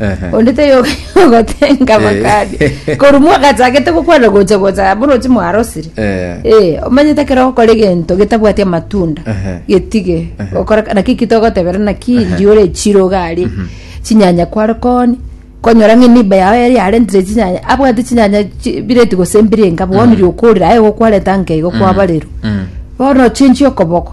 Ehe. onde teyoka yogotenga Eh. makadi korwa mwagachagete gokwana gocha gocha borochi mwarosire Eh. Eh, omanyete ekero ogokora egento getabwati amatunda Ehe. getige Ehe. gokora naki ki togotebera naki Ehe. ndiore echiro gari chinyanya kware koni konyora ng'a eniba yao yari yarentire chinyanya abwate chinyanya chi- bireti gose mbirenga bono riokorire aye gokwareta nkeigo kwabarerwa Mm. bono ochenchie okoboko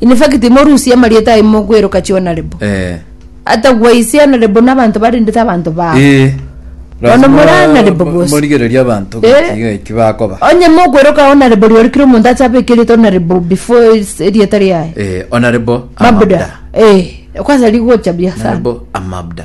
In fact, timorusia amarieta aye mogweroka chionarebo. Eh. Atagwa ise anarebo n'abanto barendete abanto bao. Eh. Bono more anarebo bose. Morigereria abanto Eh. gokiga eki bakoba. Onye mogweroka onarebo riori kera omonto acha abeke erieta onarebo before is- erieta riaye. Eh, onarebo Mabuda. amabda. Eh, kwasa rigocha bia sana. Onarebo amabda.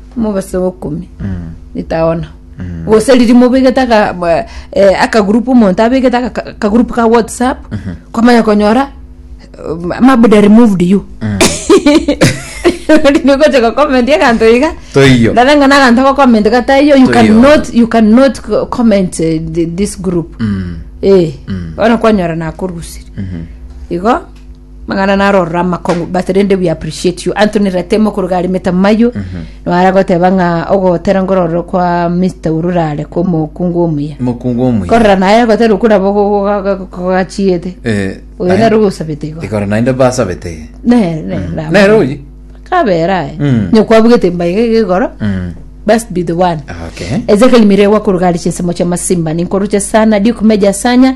Omobese o bokomi itaona gose riria mobegete aka- ba- eh, akagroup omonto abegete aka- akagroup ka whatsapp kwamanya konyora um, mabuda removed you Riria ogocha gocomment eganto iga Toiyo. nare ng'a naganto gocomment gataiyo you Toiyo. cannot you cannot co- comment eh, thi- this group eh bono kwanyora nakorusire igo Mang'ana narorora amakong'u but rende we appreciate you Anthony Ratemo koruga ari Meta Mayo nwara goteba ng'a ogotera ngororo kwa Mr. Urura are kwa omokungu omuya mokungu omuya korora naye agotera okoraba kogachiete Eh, oyo naye- nere ogosabete igo ikoro naende basabete iga. nere nere nabo. nere oyi kabera aye Mm. nyokwabugete mbaige igoro Mm, best be the one okay Ezekiel Mirewa Kurugari Chinsemo Cha Masimba Ninkoruche Sana Duke Meja Sanya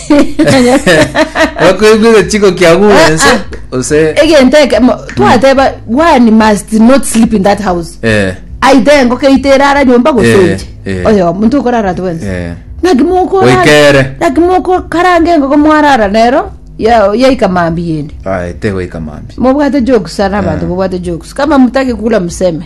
Bakoigwa egechiko kia gure Ah, ense ah. gose egento ekemo twateba one must not sleep in that house eh aite engoko eite erara nyomba Eh, gosoche eh. oyo omonto okorara twensi eh naki moko Oikere. naki moko karanga engoko mwarara nero ya- yaika mambi yende ah ete goika mambi mobwate jokes sana abantu Eh. mobwate jokes kama mutaki kula mseme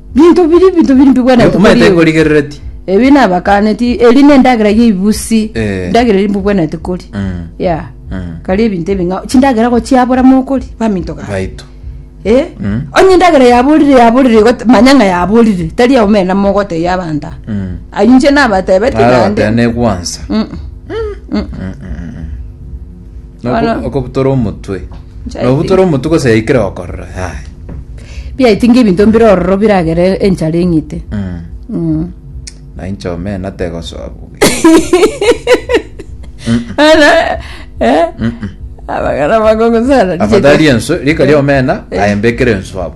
Binto biri binto biri mbigwenete kori omanyete ebi. korigerereti Ebi nabakaneti eri nendagera ya ibusi. Eh. Ndagera eri mbigwenete kori. Mm. Ya. Mm. Kari ebinto ebi ng'a chindagera gochiabora mokori baminto gaye. baito Eh? Mm. Onye endagera yaborire yaborire igote- manya ng'a yaborire tari omena mogotebia abanto aba. Mm. Ayio inche nabatebeti naende. abatene gwansa Mm. Na Bono. oko- okobutora omotwe Nchae na obutora omotwe gose yaikire gokorora yaya biaiti ng'ebinto mbire ororo biragere enchara eng'ite Mm. Mm. na inche omena tegosoa buge Ana, eh? abagana bakongo sana afadhali enso rika ria omena aembekere enso abo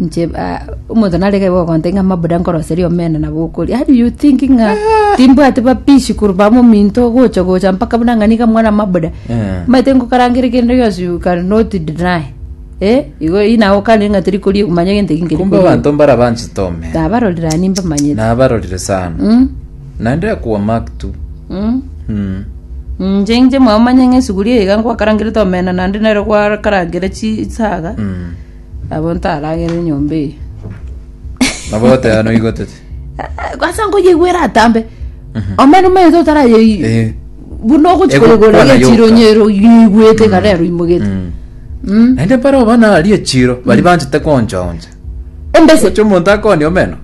Inche ah, omonto narege igo ogonte ng'a mabuda nkoroseria omena nabo okoria how do you think ng'a timbwate bapishi korwa mominto gocha gocha mpaka buna ng'a niga mwana mabuda Eh. maete ngokarangere kende gionsi you can not deny eh igo eri nago okane ng'a teri koria manya gento eki nkeri kumbe koria abanto mbarabanchete omena nabarorera nimba manyete nabarorire sana Mm. Naende akogwa Maktu. Mm. Mm. Inche inche mwamanya ng'a esuguri eye iga nkwakarangerete omena naende nero gwakarangera chisaga Mm. abo ntaragere nyomba eye Nabo goteba noigo tete. asa nkoyegwera atambe omena omanyete otarayei Eh. buna ogochi Ego- koyegora kwana yoka. gechironyero yegwete karero imogete Mm. Mm. Naende mpare obana aria echiro bari banchete konchaoncha. Embese. Omochie omonto akooni omeno,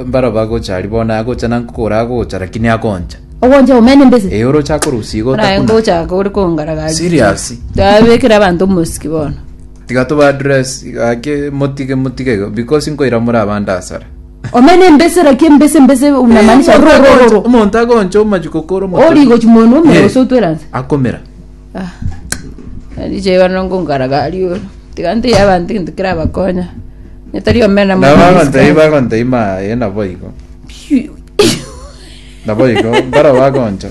mbaro bagocha aria bono agocha na nkoro agocha lakini akoncha. Ogoncha omeno embese. Ee oroche akorusia iga Naye otakuna. ngochaka ore kongaragaria. Serious. Tabekera abanto omosiki bono. Tiga toba address gaki motige motige iga because nkoira more abande asare. Omeno embese raki embese embese unamaanisha Omonto agoncha- rorororo. Omonto agoncha omachiko koro Ori gochi mono omero Eh. gose otweranse. Akomera. Ah, richa iga nonya ngonkara gari ore tiga nteiyo abanto egento kerabakonya onye tari omena na mono bagontei risk. bagontei maye naboigo naboigo mbaro bagoncha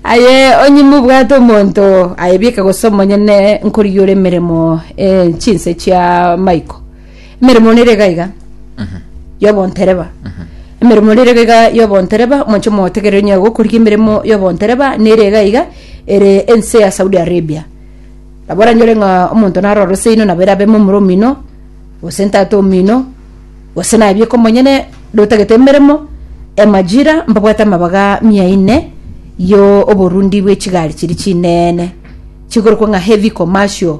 aye onye mobwate omonto aye bieka gose omonyene nkorigia ore emeremo eh, chinse chia maiko Emeremo nere iga iga y'obontereba. Emeremo nere iga iga y'obontereba, omonche omogotegereri onye gokorigia emeremo y'obontereba nere iga iga ere ense ya Saudi Arabia. Nabo oranyore ng'a omonto naro orose inwe nabo erabe momura omino, gose ntata omino, gose naye bieka omonyene, ndotagete emeremo, emajira mbabwate amabaga mia ine y'oborundi bw'echigari chiria chinene, chikorokwa ng'a heavy commercial.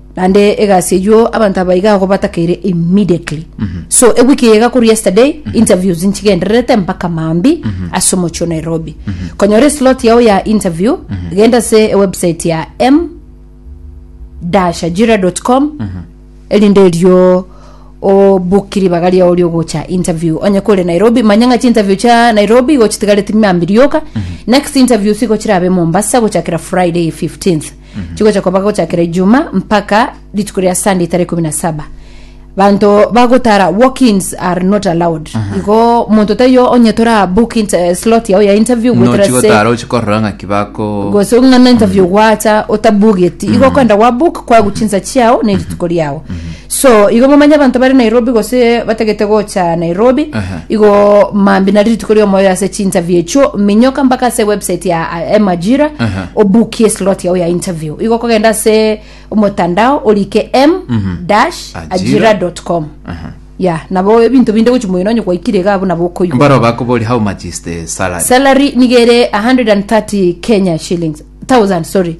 naende egasi eywo abanto aba iga agwo batakeire immediately so ewiki eye igakorwa yesterday interviews nchigendererete mpaka maambia ase omochie o nairobi konyora eslot yao ya interview genda ase ewebsite ya m ajira.com erinde erio obuki ribaga riao riogocha interview onye kore nairobi manya ng'a chinterview chia nairobi igo chitigareti maambia rioka next interviews igo chirabe mombasa gochakera friday 15th chigocha koba gochakera ijuma mpaka rituko ria sunday tarehe kumi na saba banto bagotara walkins are not allowed igo omonto taiyo onye tora book int- eh, slot yao ya interview gwetera se nochigotara ochikorora ng'aki bako gose ng'ana interview gwacha otabugeti igo kwenda gwa book kwagu chinsa chiao ne rituko riao So igo momanye abanto bare Nairobi gose batagete gocha Nairobi Aha. igo mambi nari rituko ria omoyo ase chinterview echio minyoka mpaka ase website ya eh, emajira Aha. obukie slot yao ya interview igo kogenda ase omotandao orike m dash Ajira. ajira dot com Aha. ya nabo ebinto binde gochi moino onye gwaikire iga abuna bokoigwa mbaro bakobori how much is the salary salary nigere 130 kenya shillings 1000 sorry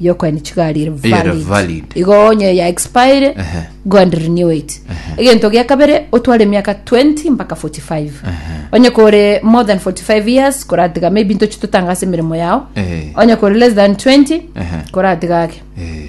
yokoenda chigari ere Ere valid. valid. igo onye ya expire Ehe. go and renew it egento gia kabere otware emiaka 20 mpaka 45 onye kore more than 45 years koratiga maybe ntochi totangase emeremo yao Eh. onye kore less than 20 Ehe. koratiga ake Eh.